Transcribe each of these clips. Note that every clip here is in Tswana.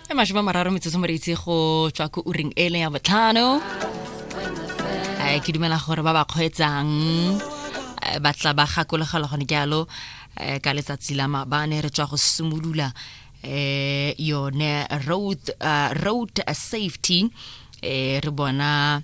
e masome mararo metsotso moreitse go tswa ko uring e leng ya botlhano um ke dumela gore ba ba kgweetsang eh, ba tla ba gakologelwa gone jalo um ka letsatsi la mabane re tswa go simolola um yone road, uh, road safety um re bona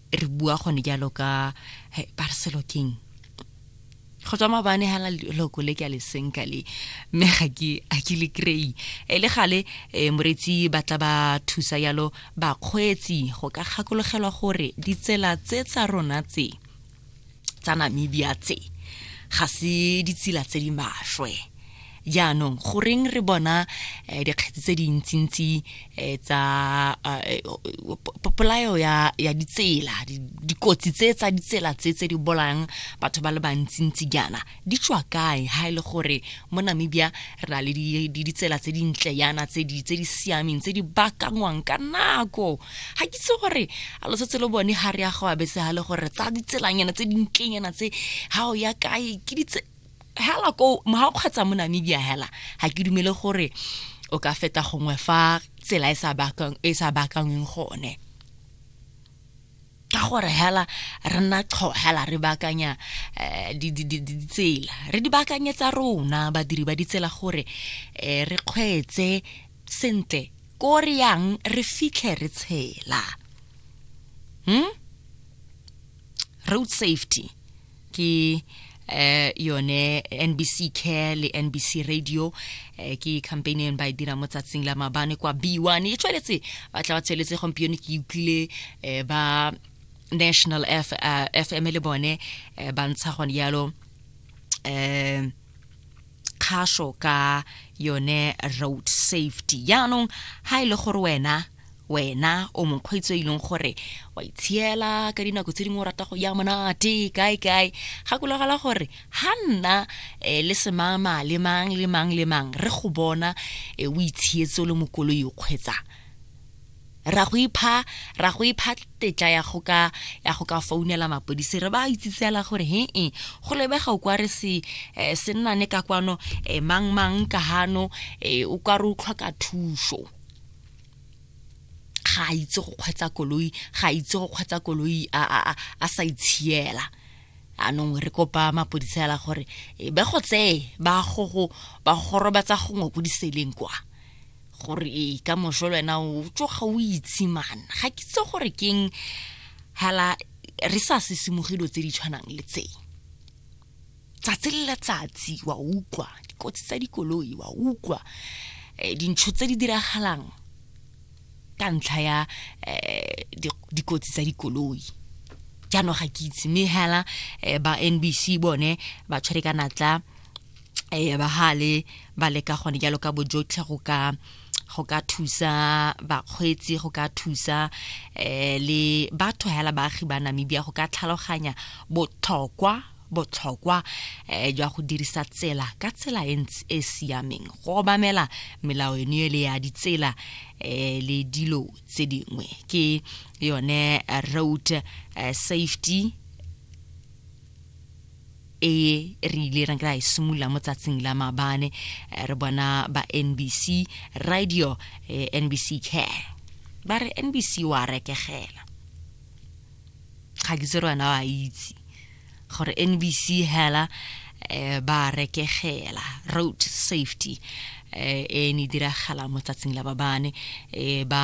re bua gone jalo ka hey, barselo king go tswa mabane ga loko le ke a le senka le mme ga ke a ke le kry e le gale eh, moretsi ba tla ba thusa yalo bakgweetsi go ka gakologelwa gore ditsela tse tsa rona tse tsa namibia tse ga se ditsela tse di maswe jaanong goreng re bona eh, dikgetsi tse dintsintsi eh, tsa eh, polayo ya, ya ditsela dikotsi tse tsa ditsela tse tse di bolayang batho ba le bantsintsi jaana Di tswa kae ha e le gore mo Namibia re na le ditsela tse dintle yana tse di siameng tse di bakangwang ka nako ga ke itse gore a lo setse lo bone ga re ya go abetse ga le gore tsa ditselanyana tse dintlenyana tse ga o ya kae ke ditse hela ko ga o kgwetsa mo Namibia hela ga ke dumele gore o ka feta gongwe fa tsela e sa bakangweng e gone ka gore hela re nna qho hela re baakanya eh, ditsela re di baakanyetsa rona badiri ba ditsela gore eh, re kgweetse sentle ko re yang re fitlhe re tshela hmm? road safety ke eh yone NBC Care le NBC Radio eh ke campaign eno ba e dira mo tsatsing la mabane kwa B1 e tsweletse ba tla ba tsweletse gompieno ke utlwile eh ba National F, uh, FM le bone eh, ba ntsha gone yalo eh kgaso ka yone road safety jaanong ha e le gore wena wena o mokgweetsi o e leng gore wa itshiela ka dinako tse dingwe o rata go ya monate kae kae gakologela gore ha nna um le semama le mang le mang le mang re go bona um o itshietse o le mokoloi o kgweetsang ra go ipha ra go ipha tetla ya go ka ya go ka founela mapodisi re ba itsitsela gore he e go lebega o kwa re se eh, se nna ne ka kwano eh, mang mang ka hano eh, o kwa re o tlhoka thuso ga a itse go kgwetsa koloi ga a itse go kgwetsa koloi a, a, a, a sa itshiela anong re kopa mapodisa ela gore eh, be go tseye ba go go ba go gorobatsa gongwe ko diseleng kwa gore e ka moso le wena o tsoga o itshimana ga ke tse gore keng hala re sa sesimogelo tse di tshwanang le tse tsatsi le letsatsi wa utlwa dikotsi tsa dikoloi wa utlwa eh, dintsho tse di diragalang ka ntlha ya eh, dikotsi tsa dikoloi jaanong ga ke itse mme hela eh, ba nbc bone ba tshwere ka natla eh, bahale ba leka gone jalo ka bojotlhe go ka go ka thusa bakgweetsi go ka thusa um le batho hela baagi ba namibia go ka tlhaloganya botlhokwa botlhokwa um jwa go dirisa tsela ka tsela e ntse e siameng go obamela melao eno e le ya ditsela um le dilo tse dingwe ke yone road safety e re ile ra kry simolola mo tsatsing la mabane eh, re bona ba nbc radio eh, nbc care ba re nbc wa rekegela ga ke tsere wena wa itse gore nbc hela eh, ba rekegela road safety eh, e ne diragala mo tsatsing la babane eh, ba